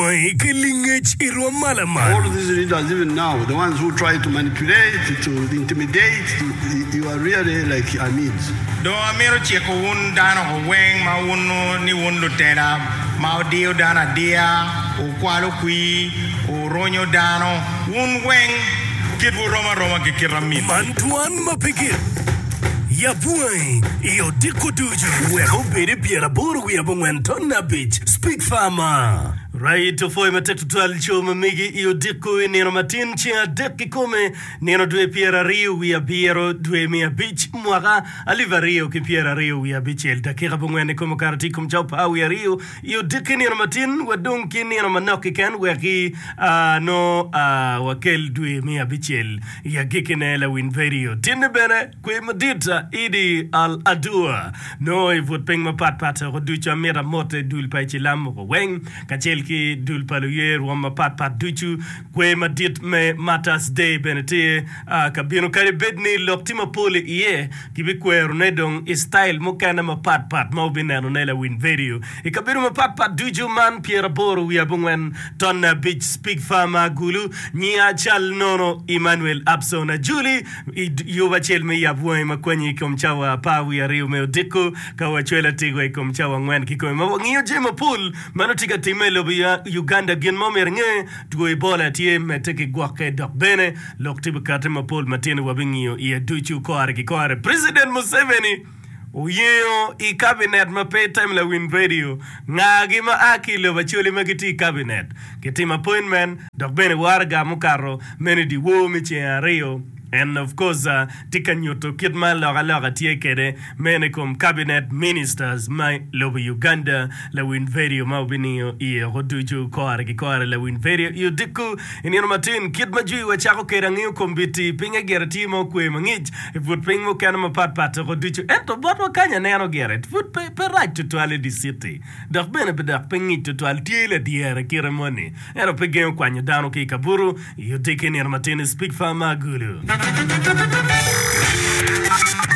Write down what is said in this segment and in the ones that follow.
Kwangi ki lingec i rwom ma laman. Dong amito ciko wun dano weng ma wuno ni wun lutela ma wudiyo dano adiya, wukwalo kwir, wuronyo dano, wun weng kitwu rom aroma ki kite amitwu. ma pe gin ya bunga-ngi i odiko ducu. Wek obed i pyer aboro wiye abongwen ton abic, Speak Farmer. Right of way matek tutwal co ma megi i odiko i nino matin ceng adek kikome, nino dwe pyer ariyo wiye abiro, dwe me abic, mwaka alip ariyo ki pyer ariyo wiye abicel, dakika abongwen ikome okato tye i kom cawa par wiye ariyo i odiko i nino matin wa dong ki nino manok kiken wek ki a nongo a wakel dwe me abicel. I agikkine, lawiny vedio tinni bene kwer madit Idi Al Adua nongo i but piny mapat pat doko ducu amito amote dul pa icilam mogo weng kacel ki dul pa luye rwom mapat pat ducu. Kwer madit me Martyrs Day bene tye ka bino kadi bed ni lok tye mapol iye, kibikwerone dong i style mukene mapat pat ma wubinenone lawiny vedio I kabedo mapat pat ducu man Pyeraboro wiye abongwen, Tonne abic, Spigfa ma Agulu, Nyi Acal Nono, Emmanuel Abson Ajuli, i yub acel me yab wangi ma kwanyi i kom cawa apar wiye aryo me odiko ka wacwelo atigwa i kom cawa angwen kikome ma wangiyo jami mapol ma nongo tye ka timme i lobo Uganda. Gin ma omyero inge, Two Ebola tye medde ki gwokke dok bene lok tye bikati mapol matino wabi ngiyo iye ducu kore ki kore. President Museveni. Oyengo i kabinet ma pe item lawiny redio ngagi ma a ki i lobo Acholi ma gitye i kabinet kitimo appointment dok bene waraga mukato meno i dyewor me ceng aryo and of course tye ka nyuto kit ma alokaloka tye kwede meno i kom kabinet ministers me lobo Uganda lawiny redio ma wubiningo iye oko ducu kore ki kore lawiny redio i odiko i nino matin kit ma jwiwa cako kwede angeyo kombiti pinge gire tye ma okwe mangic I put piny mukene mapat pat toko ducu, ento botwa kany aneno gire pud pe rac tutwal i di citi dok bene pe dok pe ngic tutwal. Tye ladyere kite moni ento pe gengo kwanyo dano ki i kabutu i odiki nino matin i Speak Farm ma Agulu.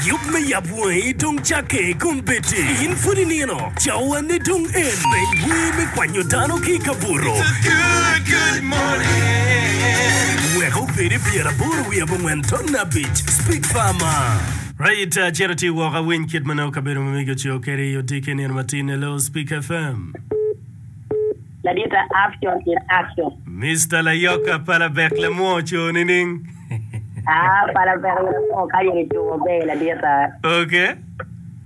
Yub me yab wangi dong cakke i kom bed-di in pud inino. Cawane dong en me wer me kwanyo dano ki i kabuto. Wek obedi pyeraboro wiye abongwen ton abic. Speak Farmer. Right, cit ati woko awiny kit ma nongo kabedo ma megi oceo kede i odiki nino ma tin. Hello, Speak FM. Ladita action in action. Mister Layoka pala bek lamwo ocoo nining? Aa pala bek lamwo kany eni coo maber ladita. Okay.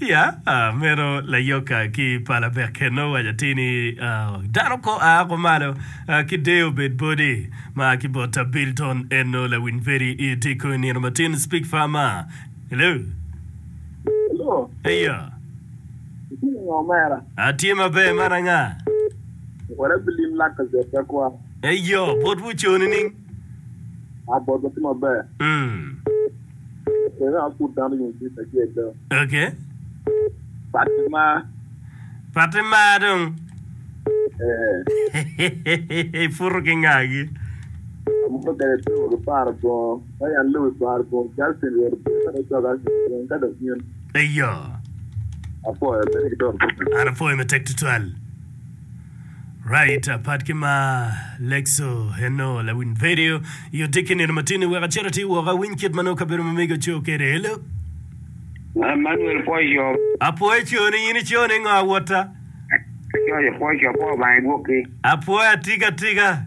Ya, meno layoka ki pala bekke nongo owaco atir ni, Dano kor a woko malo ki deyo obed boti. Mar ki bot ta Bilton en nongo lawiny peri i tic kong i nino matin. Speak farmer. Hello. Hello. Eya. Itye nge omera? Atye maber man anga? Wot abilim lak ka jot ka kwa. Eyo, botwu oco nining? A botwa tye maber. Mm. Pati mar dong. Iputo ki ngagi. Eyo. An apwoyo matek tutwal. Right, apat ki ma Lexo eno lawiny vedio i odik ki nino matini wek acit atir woko awiny kit ma nongo kabedo ma mego co kede. Hello. Man Manuel pwoc co. Apwoyo coni in ico ni ngo awota? Coco pwoc co pwo Obanga igwokki. Apwoyo atiga atiga.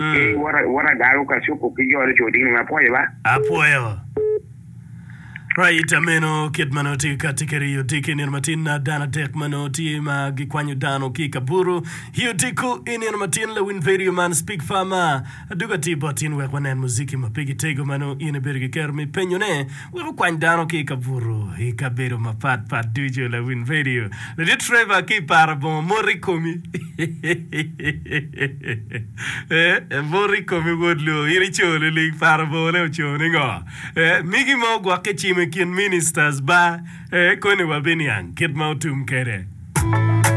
Ee wot agalo ka cuko ki jone co ding dong apwoyo ba. Apwoyo. Right ameno kit ma nongo tye ka tye kede iyo diki nino matin na dano adek ma nongo tye ma gikwanyo dano ki kaburu iyo diko i nino matin lawin vedio man speak farmer adugo atir bot in wek wanen muziki ma pe gitego ma nongo in ibedo ki kero me penyo ne Wek okwany dano ki i kabuto i kabedo mapat pat ducu, lawiny redio Ladit Trevor ki i para bongo mot i komi. Ee, mot i komi wod loo, in i co lilig para bongone oco ningo? Ee, migi ma ogwokke cimo i kin ministers ba, ee, koni wabiniang kit ma otum kede.